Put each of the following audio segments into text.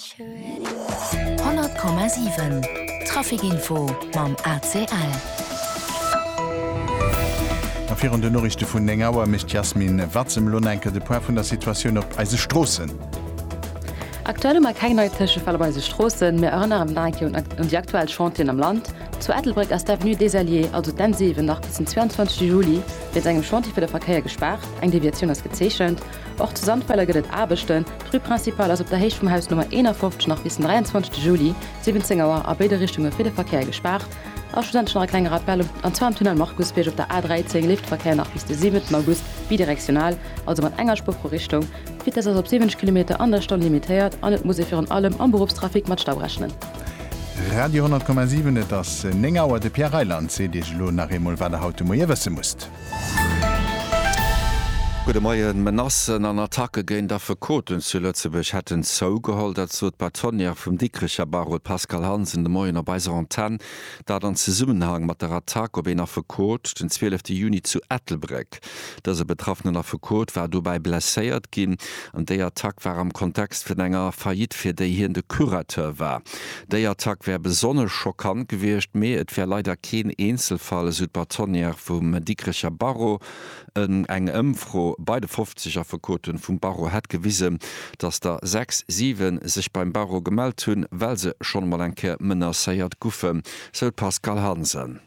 100,7 Trafic-Info mam ACL. A virun den Noriichte vun 9 Auer mécht d'Yasmin Watzem elo nach eng Kéier de Point vun der Situatioun op eise Stroossen. Aktuell hu mer keng nei Tëschefäll op eise Stroossen. Mir erënneren nach eng Kéier un déi aktuell Chantieren am Land. Zu Ettelbréck ass d'Avenue des Alliés, also d'N7, nach bis den 22 Juli wéinst engem Chantier fir de Verkéier gespaart. Eng Deviatioun ass gezeechent. Och zu Sandweiler gëtt et Aarbechten. D'Rue principale ass op der Héicht vum Haus Nummer 51 nach bis den 23 Juli, 17 Auer, a béide Richtunge fir de Verkéier gespaart. A schlussendlech nach e klenge Rappel, an zwar am Tunnel Markusbierg op der A13 leeft de Verkéier nach bis de 7 August bidirektional, also mat enger Spuer pro Richtung. D'Vitess ass op 70 Kilometer an der Stonn limitéiert an et muss ee virun allem am Beruffstrafic mat Stau rechnen. Radio 10,7 Et ass 9 Auer, de Pierre Reyland seet Iech elo nach eemol wat der haut de Moie wësse musst. Gudde Moien. Menacen an Attacke géint Affekoten zu Lëtzebuerg hätten zougeholl. Dat sot d'Bâtonnière vum Dikricher Barreau, d'Pascale Hansen, de Moien op eiser Antenn. Dat an Zesummenhang mat der Attack op een Affekot den 12 Juni zu Ettelbréck. Dëse betraffenen Affekot war dobäi blesséiert ginn an déi Attack war am Kontext vun enger Faillite, fir déi hien de Curateur war. Déi Attack wär besonnesch schockant gewiescht, mee et wär leider keen Eenzelfall, esou d'Bâtonnière vum Dikrecher Barreau. Eng Ëmfro bei de 50 Affekote vum Barreau hätt gewisen, datt der sechs, siwe sech beim Barreau gemellt hunn, well se schonn emol eng Kéier menacéiert guffe, sou d'Pascale Hansen.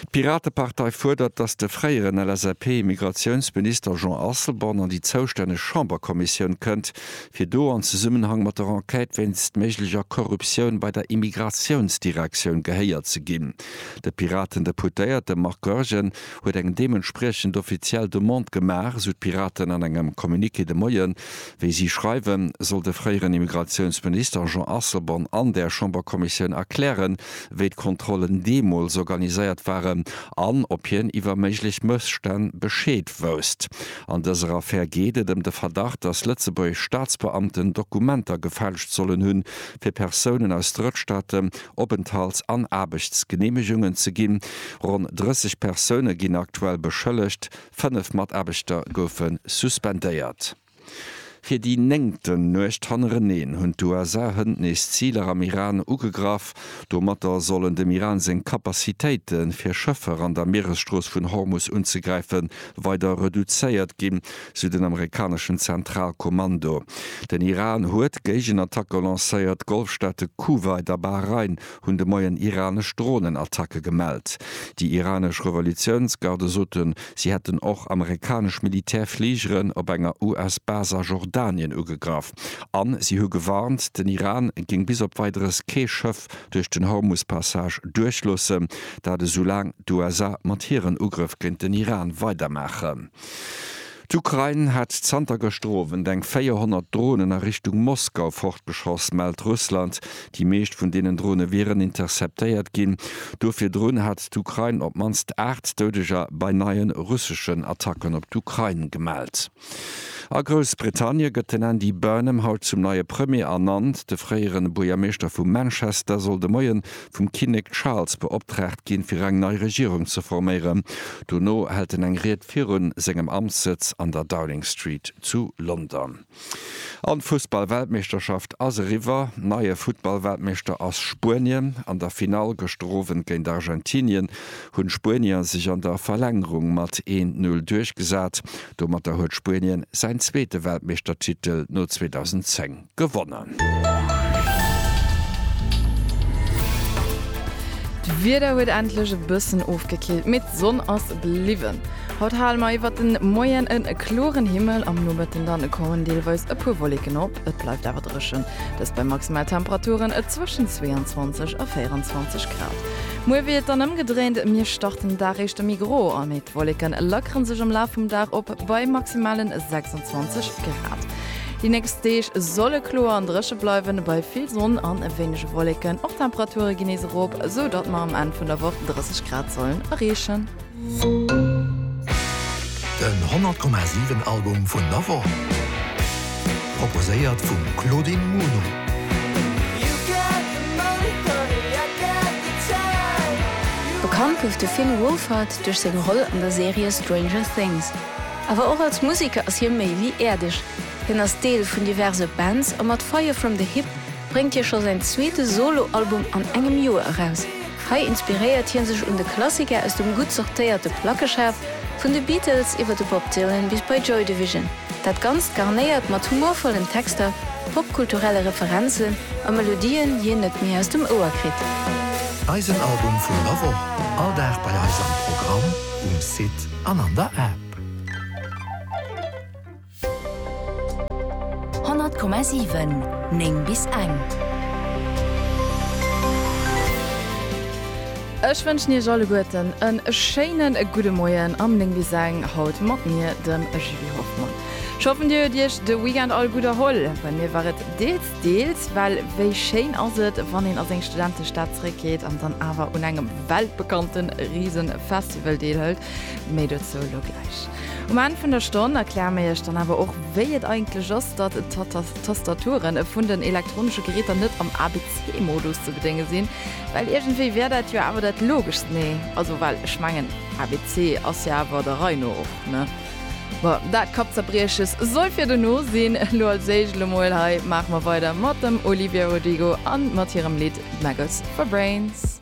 D'Piratepartei fuerdert, datt de fréieren LSAP-Immigratiounsminister Jean Asselborn an déi zoustänneg Chamberkommissioun kënnt, fir do an Zesummenhang mat der Enquête wéinst méiglecher Korruptioun bei der Immigratiounsdirektioun gehéiert ze ginn. De Piraten-Deputéierte Marc Goergen huet eng deementspriechend offiziell Demande gemaach, esou d'Piraten an engem Communiqué de Moien. Wéi si schreiwen, soll de fréieren Immigratiounsminister Jean Asselborn an der Chamberkommissioun erklären, wéi d'Kontrollen deemools organiséiert waren an ob hien iwwer méiglech Mësstänn Bescheed wousst. An dëser Affär geet et ëm de Verdacht, datt lëtzebuergesch Staatsbeamten Dokumenter gefälscht sollen hunn, fir Persounen aus Drëttstaate Openthalts an Aarbechtsgeneemegungen ze ginn. Ronn 30 Persoune ginn aktuell beschëllegt, Fënnef Mataarbechter goufe suspendéiert. Fir déi néngten Nuecht hannereneen hunn d'USA-Hënn nees Ziler am Iran ugegraff. Domatter sollen dem Iran seng Capacitéite fir Schëffer an der Mieresstrooss vun Hormus unzegräife weider reduzéiert ginn, sou den amerikaneschen Zentralkommando. Den Iran huet Géigenattacke lancéiert, d'Golfstaate Kuwait a Bahrain hunn de Moien iranesch Dronenattacke gemellt. Déi iranesch Revolutiounsgarde soten, si hätten och amerikanesch Militärfligeren op enger US-Bas a Jordanien ugegraff. An si hu gewarnt, den Iran géing bis op Weideres kee Schëff duerch den Hormus-Passage duerchloossen, dat esoulaang d'USA mat hiren Ugrëff géint den Iran weidermaachen. D'Ukrain hat zanter gëschter Owend eng 400 Dronen a Richtung Moskau fortgeschoss, mellt Russland. Déi meescht vun deenen Drone wieren interceptéiert ginn. Do virdrun hat d'Ukrain op d'mannst aacht Doudeger bei neie russeschen Attacken op d'Ukrain gemellt. A Groussbritannie gëtt den Andy Burnham haut zum neie Premier ernannt. De fréiere Buergermeeschter vu Manchester soll de Moie vum Kinnek Charles beoptraagt ginn, fir eng nei Regierung ze forméieren. Dono hält en eng Ried. viru sengem Amtssëtz an der Downing Street zu London. An d'Fussballweltmeeschterschaft ass eriwwer. Neie Futtballweltmeeschter ass Spuenien. An der Finall gëschter Owend géint Argentinien hunn d'Spuenier sech an der Verlängerung mat 1-0 duerchgesat. Domatter huet Spuenien säin zweete Weltmeeschtertitel no 2010. gewonnen. D'Wieder huet endlech e bëssen ofgekillt, mee d'Sonn ass bliwwen. Haut hale mer iwwert de Moien e kloren Himmel, am Nomëtten dann koumen deelweis e puer Wolleken op. Et bleift awer dréchen, dëst bei Maximaltemperaturen zwëschen 22 a 24 Grad. Muer wier et dann ëmgedréint, mir starten den Dag éischter méi gro an, mee d'Wolleke lackere sech am Laf vum Dag op bei maximalen 26 Grad. Déi nächst Deeg solle kloer an dréche bleiwen, bei vill Sonn an e wéinege Wolleken. Och d'Temperature ginn nees erop, sou datt mer am Enn vun der Woch 30 Grad sollen erreechen. Den 100,7 Album vun der Woch, proposéiert vum Claudine Muno. Bekannt gouf de Finn Wolfhard duerch seng Roll an der Serie Stranger Things. Awer och als Museker ass hie méi wéi äerdeg. Hien ass Deel vun diverse Bands a mat Fire From The Hip bréngt hie scho säin zweete Solo-Album an engem Joer eraus. Hei inspiréiert hie sech un de Klassiker aus dem gutt sortéierte Plackeschaf, vun de Beatles iwwer de Bob Dylan bis bei Joy Division. Dat Ganzt garnéiert mat humorvollen Texter, popkulturelle Referenzen a Melodien, déi een net méi aus dem Ouer kritt. Eisen Album vun der Woch, all Dag bei eis am Programm um Site. an an der App. 100,7 9 bis eng. Ech wënschen Iech alleguerten en schéine gudde Moien am 9 bis eng, haut mat mir, dem Julie Hoffmann. Ech hoffen, Dir huet Iech de Weekend all gutt erholl. Bei mir war et deels. Deels, well wéi schéin ass et, wann een a seng Studentestad zréckgeet an dann awer un engem weltbekannte Riesefestival deelhëlt. Méi dozou elo gläich. Um Enn vun der Stonn erkläre mir iech dann awer och, wéi et eigentlech ass, datt d'Tastaturen vun den elektronesche Geräter net am ABC-Modus ze bedénge sinn, well iergendwéi wär dat jo awer dat Logeschst, nee, also well ech mengen, ABC ass jo awer der Rei no och, ne? Bon, dat Kappzerbrieches soll fir dono sinn. Lo als éischt lo mol hei maache mer weider mat dem Olivia Rodrigo an mat hirem Lidd Maggots for Brains.